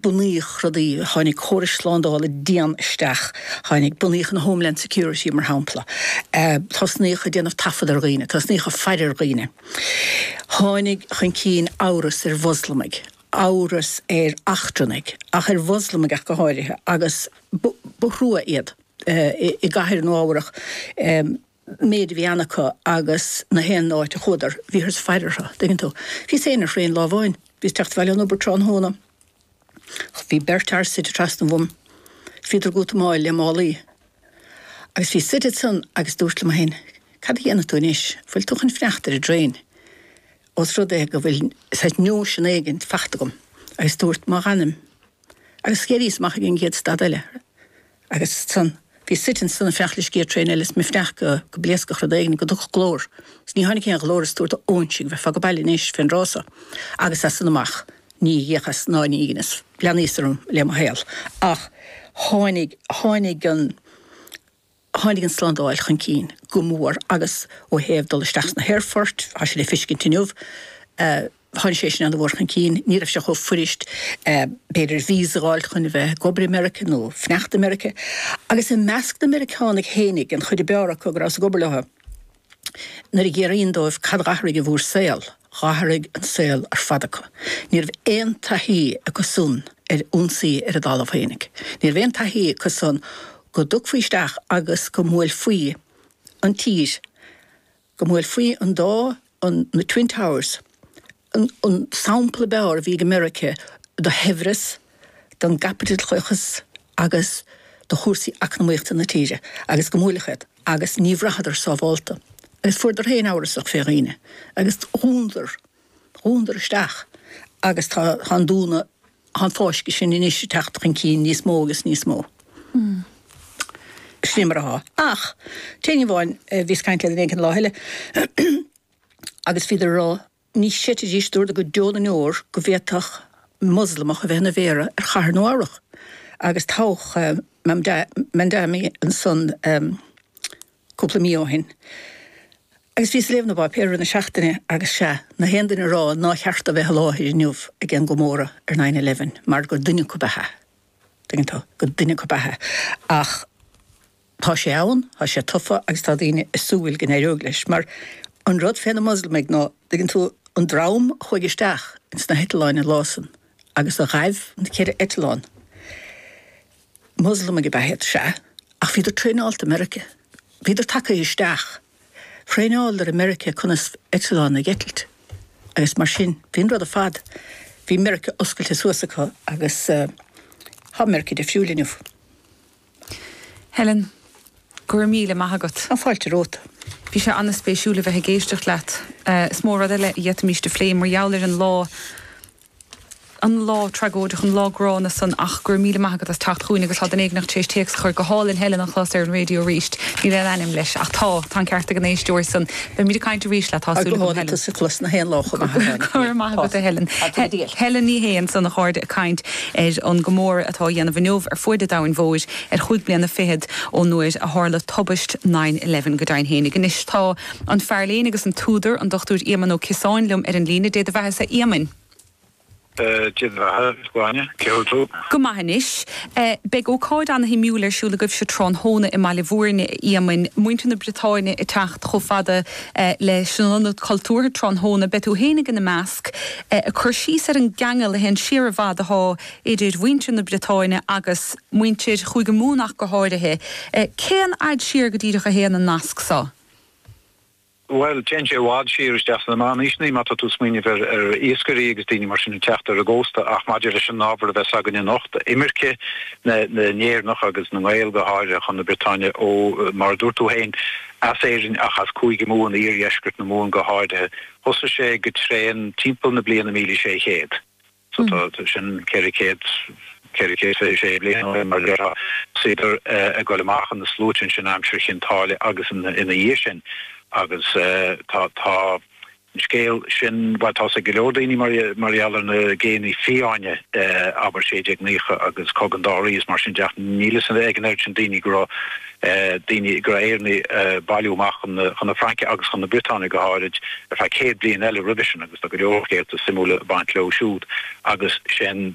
bunaíodh rudaí, tháinig córais slándála dian isteach, tháinig, bunaíodh an Homeland Security mar shampla, tosnaíodh ag déanamh taifead ar dhaoine, tosnaíodh ag faire ar dhaoine. Tháinig chun cinn amhras ar Mhoslamaigh, amhras ar eachtrannaigh ach ar Mhoslamaigh ach go háirithe agus ba thrua iad i gcathair Nua-Eabhrac, méid a bhí ann acu agus gach aon áit a chuadar bhíothas ag faire orthu, an dtuigeann tú. Bhíos féin ar thraein lá amháin, bhíos ag teacht abhaile ón obair tráthnóna, bhí beirt fhear suite trasna uaim, bhíodar ag útamáil le málaí agus bhíos suite ansan agus dúrt liom féin, cad a dhéanfaidh tú anois, an bhfuil tú chun fanacht ar an dtraein os rud é go bhfuil saghas nóisean éigin fachta agam agus dúrt ná fanfainn agus d'éiríos amach ag an gcéad stad eile. Agus ansan, bhíos suite ansan ag fanacht leis an gcéad traein eile is mé ag fanacht go, go bpléascfadh rud éigin, go dtiocfadh glór. Is níor tháinig aon ghlór is dúrt a óinsigh, bheifeá age baile anois fén dtráth so. Agus as san amach, ní dheaghas ná ní dheineas. Leanas orm le mo shaol. Ach tháinig, tháinig an, tháinig an tslándáil chun cinn go mór agus ó thaobh dul isteach sna haerfoirt, tá sé le feiscint inniu, eh, Tháinig sé sin ana-mhór chun cinn. Ní raibh sé chomh fuirist, b'fhéidir, víosa a dh'fháilt chun a bheith ag obair i Meiriceá nó fanacht i Meiriceá. Agus i measc na Meiriceánaigh féinig, an chuid ab fhearr acu go rabhas ag obair leo, nuair a déarainn leo cad d'athraigh i bhur saol, d'athraigh an saol ar fad acu. Ní raibh aon taithí acu san ar ionsaí ar a dtalamh féinig. Ní raibh aon taithí acu san go dtiocfaí isteach agus go mbuailfí an tír go mbuailfí an dá an na Twin Towers, an an sampla ab fhearr a bhí ag Meirice do shaibhreas, don gcaipitleachas agus do chúrsaí eacnamaíochta na tíre agus go mbuailfí iad agus ní bhraitheadar sábhálta agus fuaireadar ana amhrasach fé dhaoine agus dhúnadar dhúnadar isteach agus tá an dúnadh, tá an fáisceadh sin anois ag teacht chun cinn níos mó agus níos mó. Sin mar atá. Ach d'éinní amháin, bhíos ag caint le duine éigin an lá eile agus bhíodar ag rá, ní chreidfidís, dúradar go deo na ndeor go bhféadfadh Moslamach a bheith ina mhéara ar chathair Nua Eabhrach agus toghadh Mamdani ansan. cúpla mí ó shin agus bhíos ag léamh na bpáipéar i rith na seachtaine agus sea, gach aon duine á rá nár cheart dó bheith i láthair inniu ag aon gcomóradh ar nine eleven mar gur duine acu ab ea, tuigeann tú, gur duine acu ab ea. Ach tá sé ann, tá sé tofa agus tá daoine ag súil go n-éireoidh leis mar an rud fé na Moslamaigh ná, tuigeann tú, an dream a chuaigh isteach ins na heitleáin an lá san agus a ghaibh na ceithre eitleán, Muslamaigh ab ea iad, sea, ach bhíodar traenáilte i Meiriceá. Bhíodar tagtha isteach. Thraenáileadar i Meiriceá conas eitleán a eitilt agus mar sin. Bhí an rud ar fad, bhí Meiriceá oscailte suas acu agus tá Meiriceá difriúil inniu. Helen, go raibh míle maith agat. Tá fáilte romhat. Bhí sé an-spéisiúil a bheith ag éisteacht leat. Is mó rud eile a d'fhéadfaimis a phlé mar gheall ar an lá. an lá tragóideach, an lá gránna san ach go raibh míle maith agat as teacht chugainn agus tá duine éigint tar éis téacs a chur. Go hálainn Helen a chlos ar an raidió arís. Níl aon ainm leis ach tá. Tá an ceart ag an éisteoir san. Beimid ag caint arís leat tá súil agam Helen. Go hálainn tusa a chlos gach aon lá chomh maith a Helen. Go raibh maith agat a Helen. Helen Ní Shé ansan a chairde ag caint ar an gcomóradh atá á dhéanamh inniu ar fuaid an domhain mhóir ar chúig bliana fichead ón uair a tharla tubaist nine eleven. Go deimhin fhéinig anois tá. An fear léinn agus an t-údar, an Dr Éamon Ó Ciosáin, liom ar an líne. Dé do bheatha-sa, a Éamoinn. Dé do bheatha, a Ghráinne. Cén chaoi a bhfuil tú? Go maith anois. Beidh ócáid ana-shuimiúil ar siúl agaibhse tráthnóna i mBaile Bhúirne, a Éamoinn. Muintir na Briotáine ag teacht chomh fada leis an Ionad Cultúrtha tráthnóna. Beidh tú féinig ina measc ag cur síos ar an gceangal a théann siar i bhfad athá idir mhuintir na Briotáine agus muintir Chúige Mumhan ach go háirithe. Cén fhad siar go díreach a théann an nasc so? Bhuel, téann sé i bhfad siar isteach sna meánaoiseanna má tá tú ag smaoineamh ar, ar iascairí agus daoine mar sin ag teacht ar an gcósta ach maidir leis an ábhar a bheas againne anocht, imirce na nÉireannach agus na nGael go háirithe chun na Briotáine ó, mar a dúirt tú féin, as Éirinn ach as Cúige Mumhan, iardheisceart na Mumhan go háirithe. Thosaigh sé go tréan timpeall na bliana míle sé chéad. So tá sin ceithre céad, ceithre céad fiche sé bliain ó shin mar a déarfá. Bhíodar ag goil amach ina sluaite ansin aimsir Chinn Táile agus ina dhiaidh sin agus tá, tá an scéal sin, bhuel tá's ag go leor daoine mar, mar gheall ar na géanna fiáine abair, sé déag naocha agus Cogadh an Dá Rí is mar sin de ach níl fhios ag an oiread sin daoine go raibh, daoine go raibh Éireannaigh ag bailiú amach chun na Fraince agus chun na Briotáine go háirid ar feadh céad bliain eile roimhe sin agus tá go leor scéalta suimiúla ag baint leo siúd agus sé'n